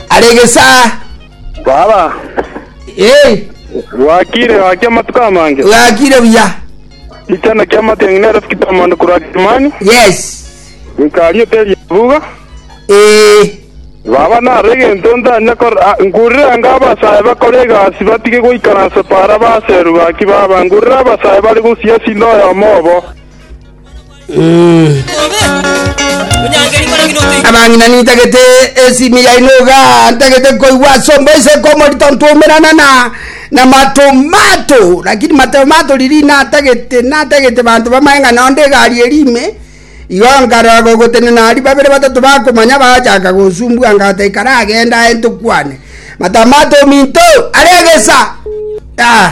Are egesaa. Baba, Eh, gwakire gwakia amatuko amange. gakire buya. Ichana kia amatiang'i nero sikita amande korwa Kilimani, Yes. ikari oteri ebuga. Eh, Baba naro egento ntanya kor ah, ngurire anga abasae bakore egasi batige goikaransa para baseru gaki baba ngurire abasae bari gosiasi noyomo obo. abang'ina nintagete esimi yaino iga ntagete koigwa ase omoiseke omorito ntwomerana na na matomato lakini matomato riri natagete natagete banto bamaye ng'a nonde egari eri ime igo nkarora gogotenena aria babere batato bakomanya bagachaka gosumbua ngata ikara agenda aye ntokwane matamato ominto are egesa ah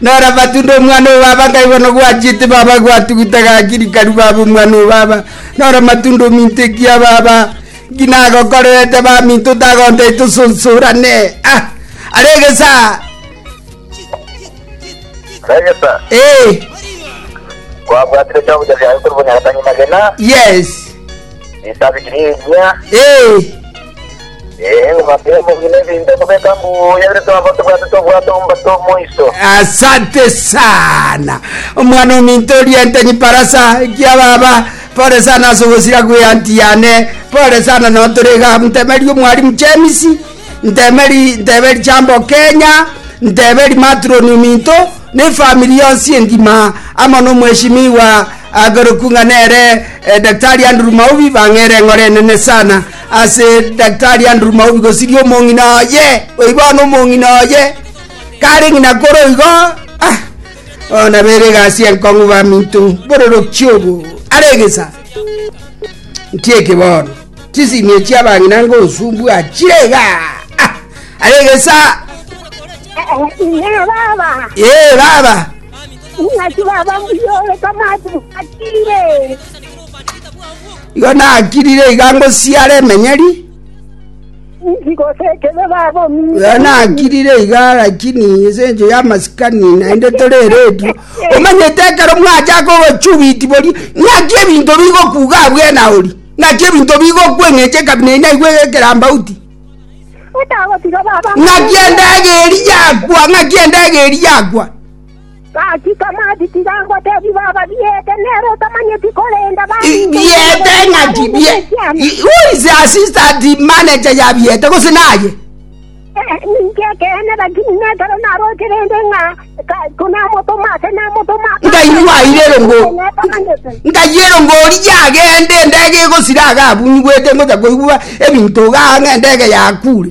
Noro amatunda omwana oo baba nkaigwa nogwachete baba gwatu gutagaki rikaru baba omwana oo baba noro amatunda ominto ekia baba ngina agokorerete baminto tagontai tosonsorane ah aregesa Regesa. eh Kwabwatire chombo cha vyayo kuri bunyagatani magena. yes Isabi kiri inya. eh Asante sana omwana ominto oriente nyiparasa ekia baba pore sana ase ogosira gwe anti yane pore sana no tore iga ntemeri omwarimu James ntemeri nteberi chambo Kenya nteberi matron ominto ne family yonsi engima amo no mweshimiwa agoroku ng'a nere eh, daktari Andrew Maubi bang'ere eng'ore enene sana Ase Daktari Andrew Maubi gosiria omong'ina oye, oibwane omong'ina oye, kare ng'ina kore oigo, ah, oh, nabere egasi enkong'u baminto, bororoki obo, are egesa. Ntie ekibono, chisimie chiabang'ina ngosumbu achire iga, ah, are egesa, Ina baba, ee baba, ing'aki baba mbuyore kamati bwatire. Igo nakirire iga ngosiare emenyeri Ngose ekebe babo iga nakirire iga lakini ase encho ya masikani naende tore eredio omanyete ekero mwachaka obochubiti bori ng'aki ebinto bigokuga abwena ori ng'aki ebinto bigokweng'eche kabina inaigwe ekerambauti Otagotiga baba. ng'aki endege eri yakwa ng'aki endege eri yakwa Gaki tamati tiga ngotebie baba biete, nere otamanyeti, korende Biete ng'aki? Who is the assistant manager ya Biete gose naye? Ninche ekeene, lakini nekero naroche rende ng'a konamotoma ase namotoma. Nkaigwa aire erongo. Nkayia erongo oria agende endege egosira agabunyigwete ngocha koigwa ebinto iga ang'a endege yakure.